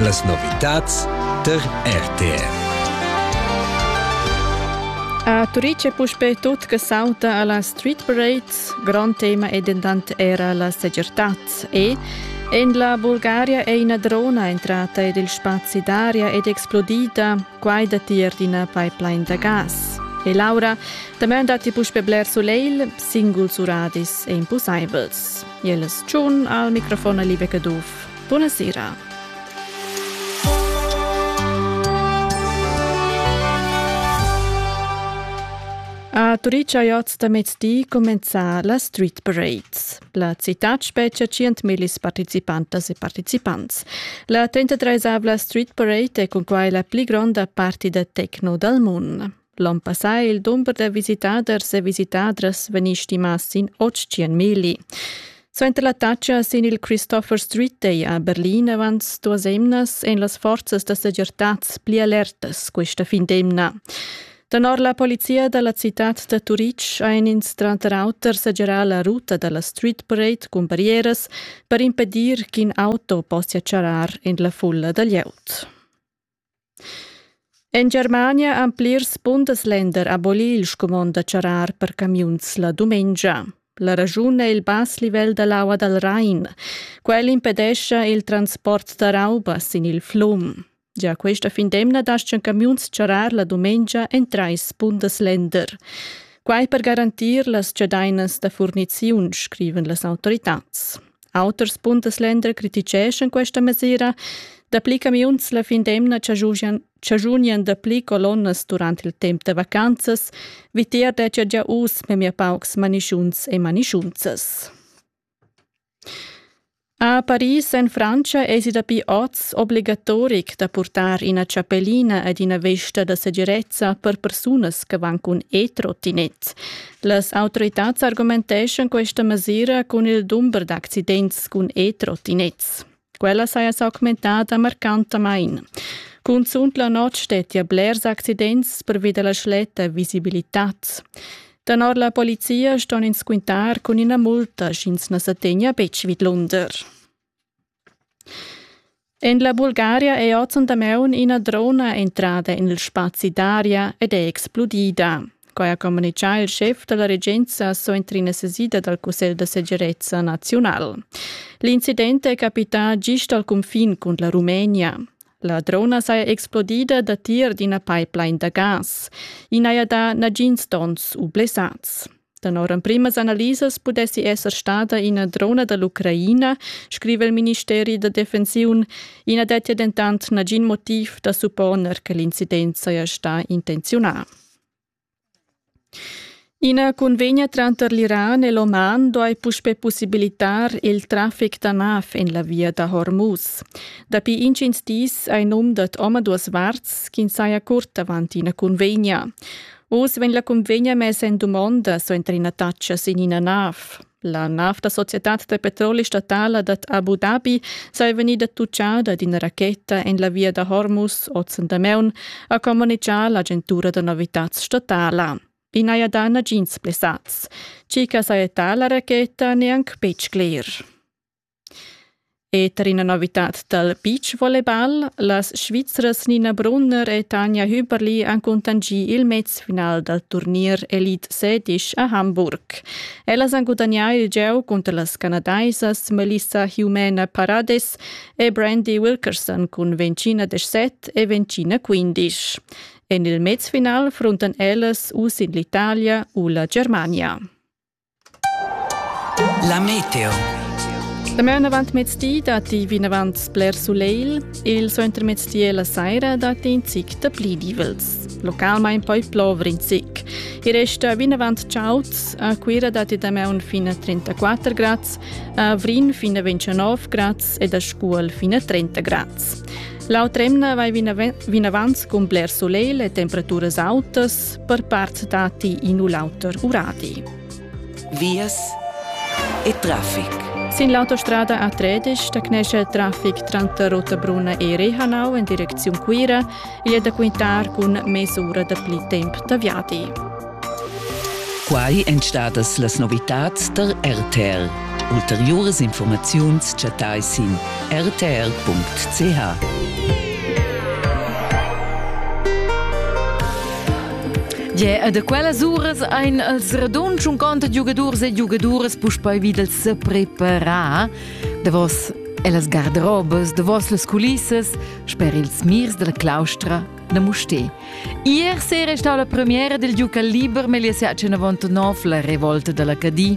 Las novitads tar RTR. A Turitg è puspè tut che sauta a la street parade. Grond tema è dentant era la segirtad e en la Bulgaria è ina drona entrata ed il spazi d'aria è explodida. Quai datti er d'ina pipeline da gas. E Laura, damain datti puspè bler sulegl, singuls uradis e impusaivels. Jeles Tschun al microfon a Libe Caduff. Buna sera. A Turica oz da mezdi comenza la Street Parades. La città spetga 100.000 participantas e partecipants. La 33esavla Street Parade è cun quai la pli gronda parti da techno dal mondo. L'on passà è il dumber da visitaders e visitadras vegnì stimà sin 800 mili. Suenter la taccia sin il Christopher Street Day a Berlin avant duas emnas èn las forzas da segirtad pli alertas questa fin d'emna. Tenor la polizia da la citad da Turitg han ins tranter auter segirà la ruta da la Street Parade cun barrieras per impedir ch'in auto possia charrar en la fulla da glieud. En Germania han plirs bundesländer abolì il scumond da charrar per camiuns la dumengia. La raschun è il bass livel da l'aua dal Rain. Quel impedescha il transport da rauba sin il flum. Gia questa fin d'emna dastgan camiuns charrar la dumengia en trais bundesländer. Quai per garantir las chadainas da furniziun, scrivan las autoritads. Auters bundesländer criticeschan questa mesira. Dapli camiuns la fin d'emna chaschunian dapli colonnas durant il temp da vacanzas. Vitier dettia gia uss memia paucs manischuns e manischunzas. A Paris en Francia esi dapi oz obligatoric da purtar ina chapellina ed ina vesta da segirezza per persunas che van cun e-trottinet. Las autoritads argumenteschan questa mesira cun il dumber d'accidents cun e-trottinets. Quella saja s'augmentada marcantamain. Cunzunt la notg stettia blers accidents pervi da la schletta visibilitad. Danor la polizia ston ins quintar cun ina multa, sch'ins na sa tegna betg vidlunder. En la Bulgaria è ozendi damaun ina drona entrada en il spazi d'aria ed è explodida. Quai ha communitgà il schef da la regenza suenter ina sesida dal Cussegl da segirezza naziunal. L'incident è capità gist al cunfin cun la Rumenia. La drona saja explodida datier d'ina pipeline da gas. I n'haja dà nagins donns u blessads. Tenor emprimas analisas pudessi esser stada ina drona da l'Ucraina, scriva il ministeri da defensiun. I na dettia dentant nagin motiv da supponer che l'incident saja stà intenziunà. Ina convegna tranter l'Iran e l'Oman duai puspè possibilitar il traffic da nav en la via da Hormuz. Dapi intgins dis hai num dad omaduas varts ch'ins saja curt avant ina convegna. Uss vegn la cunvegna messa en dumonda suenter ina taxa sin ina nav. La nav da societad da petroli statala dad Abu Dhabi saja vegnida tutgada d'ina racheta en la via da Hormuz oz en Dameun, ha communitgà l'agentura da novitads statala. I n'haja dà nagins blessads. Tgi che saja la racheta n'è anc betg cler. E tar ina novitad dal beach volleyball, las Svizras Nina Brunner e Tanja Hüberli han cuntanschì il mezfinal dal turnier Elite Sedisch a Hamburg. Ellas han gudagnà il gieu cunter las canadaisas Melissa Jumena Parades e Brandy Wilkerson cun Vencina de 7 e Vencina 15. En il mezfinal fruntan ellas uss in l'Italia u la Germania. La meteo. La maun avant mezdi datti vinavant bler sulegl. Il suentermezdi e la saira datti in zic da pli divels. Localmain poi plovre in zic. Il resta vinavant chaud. A Cuira datti damaun fin a 34 grads, a Vrin fin a 29 grads ed a Scuol fin a 30 grads. L'autr'emna vai vinavant cun bler sulegl e temperaturas autas, per part dati in u l'auter uradi. Vias e traffic. Sin l'autostrada A13 da Cnescia il traffic tranter Rottabrunna e Rehanau in direcziun Cuira è da quintar cun mesura da pli temp da viadi. Quai èn stadas las novitads tar RTL. Ulteriuras infurmaziuns chattais sin rtr.ch. Yeah, da quellas uras ein els radunds un conto de giugadurs e giugaduras puspei wieder se preparar. Davos e las garderobes, davos las culissas, sper ils mirs della claustra da Mustè. Ier sera è stata la premiera del giuca liber Meliasiac 99, la revolta della Cadi.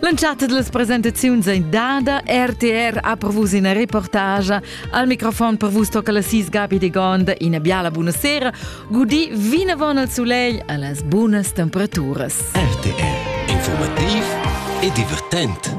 L'entschatta delle presentazioni dada RTR ha per vos una reportage. Al microfon per vos tocca la sis Gabi de Gonda, una biala buonasera, gudi vinavon al soleil a las buonas temperaturas. RTR, informativ e divertent.